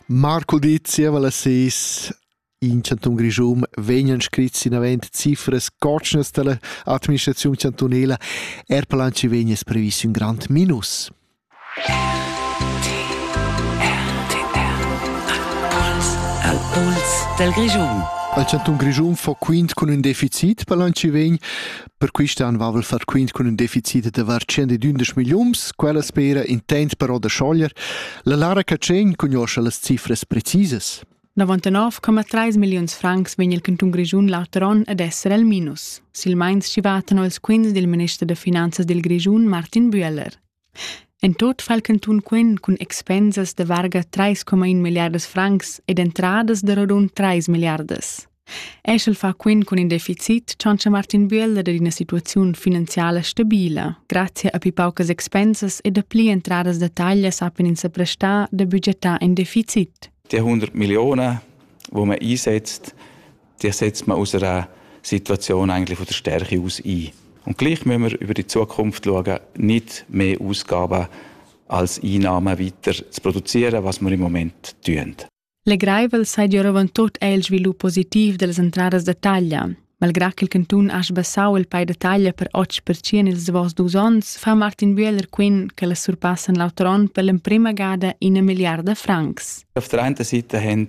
Marcudi zieva las ses in chantun Grischun vegnan scrits inavant cifras cotschnas dalla administraziun chantunela. Er per l'anci vegnes previs un grand minus. Al puls del Grischun. Il chantun Grischun fa quint cun un deficit per l'anci vegn Per quist an vavel far quint cun ün deficit da var 112 milliuns, quella spera intent però da schoglier. La Lara Catschegn cugnuoscha las cifras precisas. 99,3 milliuns francs vegn il cantun Grischun l'auter on ad esser al minus. Silmeins chi vatan els quints del minister da finanzas del Grischun, Martin Büeller. En tut fa il cantun quen cun expensas da varga trais coma in milliardas francs ed entradas da rodund trais milliardas. Eschel fa quen cun in deficit tschantscha Martin Bühler da ina situaziun finanziala stabila, grazie a pi paucas expensas e da pli entradas da taglia sappen ins prestar da budgetar in deficit. Die 100 Millionen, die man einsetzt, Dir setzt man aus einer Situation eigentlich von der Stärke aus ein. Und gleich müssen wir über die Zukunft schauen, nicht mehr Ausgaben als Einnahmen weiter zu produzieren, was wir im Moment tun. Legraivel sei die Roventut è il sviluppo positiv delle entradas da taglia. Malgrà che il cantun ha sbassau il pay da taglia per 8% ils davos dus onns, fa Martin Bühler quin che le surpassen l'auter onn per l'emprima gada una miliarda francs. Auf der einen Seite haben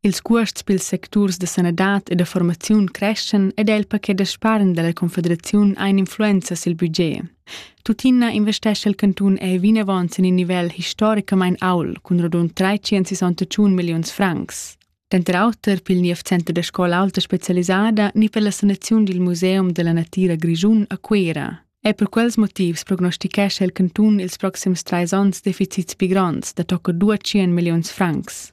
Ils cuosts pils secturs da sanadad e da formaziun creschan ed el paquet da spargn dalla confederaziun ein influenza sil budget. Tuttina investescha il cantun ei vinavon sin in nivel historicamein aul cun radund 361 milliuns francs. Denter auter pil niev center da scola alta specialisada ni per la sanaziun dil museum della natira Grischun a Cuera. E per quels motivs prognostichescha il cantun ils proxims treis onns deficits pli gronds da tocca 200 milliuns francs.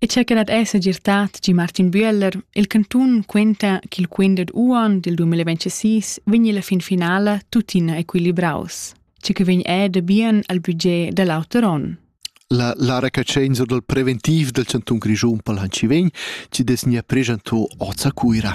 e cha que dat es segirtà tgi Martin Büeller, il cantun quenta ch'il quint dad uonn dil 2026 vegni la fin finala tuttina equilibraus, che que vegn è da bien al budget da l'auter onn. La, la recacenza dal preventiv del Cantun Grischun pal Hanci Vegn ci des nia pregento oza Cuira.